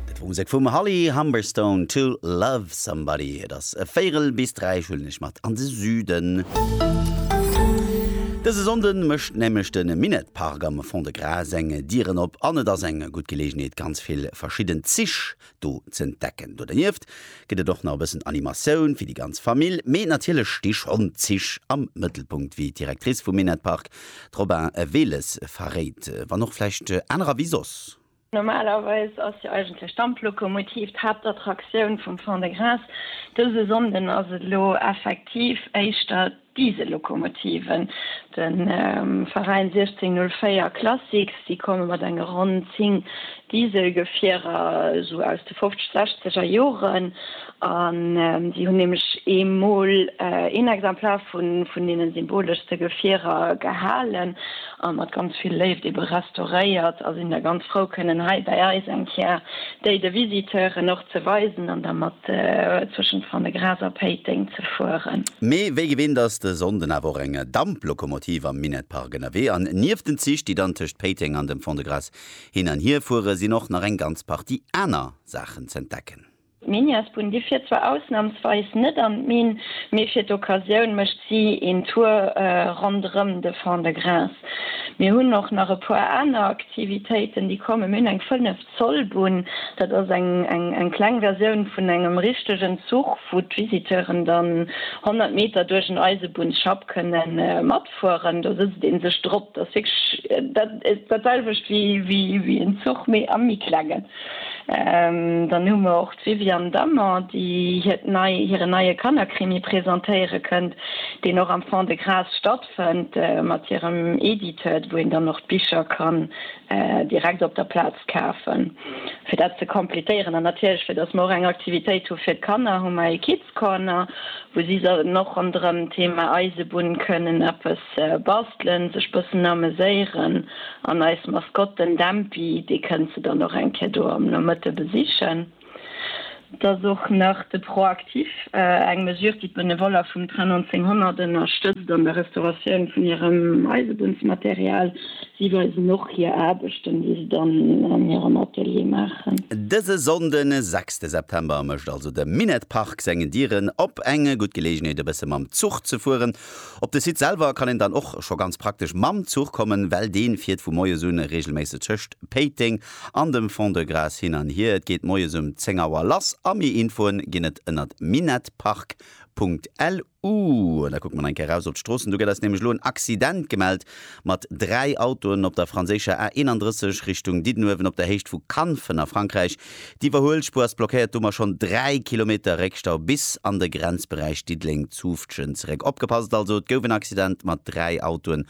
Dat wor Musek vum Holly Humberstone, To Love Somebody. Et ass e Véierel bis dräi, ech huelen iech mat an de Süden. Dëse Sonnde mécht nämlech de Minett Park am Fond-de-Gras seng Dieren op an et ass eng gutt Geleegenheet, ganz vill verschidden Zich do z'entdecken. Do dernieft gëtt et och nach e bëssen Animatioun fir déi ganz Famill. Mee natierlech sti schonn d'Zich am Mëttelpunkt, wéi d'Directrice vum Minett Park, d'Robin Wehles, verréit, wann och vläicht anerer wéi soss. Normalerweis ass jo eigentlech d'Damplokomotiv d'Haaptattraktioun vum Fond-de-Gras. Dëse Sonnden ass et elo effektiv éischter Diesellokomotiven. De Veräin 1604 Classics, déi komme mat enge ronn 10 Dieselgefierer esou aus de fofzeg-, sechzeger Joren an si hunn nämlech ee Mol een Exemplar vun deene symboleschste Gefierer gehalen a mat ganz vill Léift ebe restauréiert a sinn da ganz frou kënnen hei bei eis eng Kéier déi de Visiteuren och Ze weisen an da mat zwëschent Fernegras a Péiteng ze fueren. Mee wéi gewinnt ass de Sonnden awer och eng Damplokomotiv am Minett Park ënnerwee an nieft den Zich, déi dann tëscht Péiteng an dem Fond-de-Gras hin an hier fueren, sinn och nach eng ganz Partie aner Saachen z'entdecken. D'Miniasbunnen, déi fiert zwar ausnamsweis net an d'Minn, mee fir d'Occasioun mécht si een Tour ronderëm de Fond-de-Gras. Mir hunn och nach e puer aner Aktivitéiten, déi kommen. Mir hunn eng 5. D'Zollbunn, dat ass eng kleng Versioun vun engem richtegen Zuch, wou d'Visiteuren dann 100 Meter duerch en Eisebunnsschapp kënne matfueren. Do sëtzt ee sech drop. Dat ass wierklech dat selwecht wéi en Zuch, mee a méi klengen. Dann hu mer och d'Viviane Dammer, déi hiert nei hiren neie Kannerkrimi presentéiere kënnt, deen och am Fond-de-Gras stattfënnt, mat hirem Editeur, wou een dann och d'Bicher ka direkt op der Plaz kafen fir dat ze completéieren an natierlech fir dass mer och eng Aktivitéit hu fir d'Kanner hu mer ee Kids Corner wou si sollten och ronderëm Thema Eisebunn kënnen eppes bastelen, sech bëssen ameséieren an eis Maskotten Dämpi dee kënnt se dann och eng Kéier do am Nomëtte besichen. Et ass och nach de Proactif, eng Mesure, déi d'Benevoller vum Train 1900 ënnerstëtzt an der Restauratioun vun hirem Eisebunnsmaterial. Si weisen och hir Aarbechten, déi se dann an hirem Atelier maachen. Dëse Sonnden, 6 September, mécht also de Minett Park seng Dieren op. Eng gutt Geleegenheet, e bësse mam Zuch ze fueren. Op de Site selwer kann een dann och scho ganz praktesch mam Zuch kommen, well dee fiert vu moies un reegelméisseg tëscht Péiteng an dem Fond-de-Gras hin an hier. Et geet moies um 10 Auer lass a méi Infoen ginn et ënnert minetpark.lu. Da kucke mer nach eng Kéier raus op d'Stroossen. Do gëtt eis nämlech elo en Accident gemellt mat dräi Autoen op der franséischer A 31 Richtung Diddenuewen op der Héicht vu Kanfen a Frankräich. D'Iwwerhuelspuer ass blockéiert, domat schonn dräi Kilometer Réckstau bis an de Grenzberäich Diddeleng-Zufftgen zeréck. Opgepasst also, et gouf en Accident mat dräi Autoen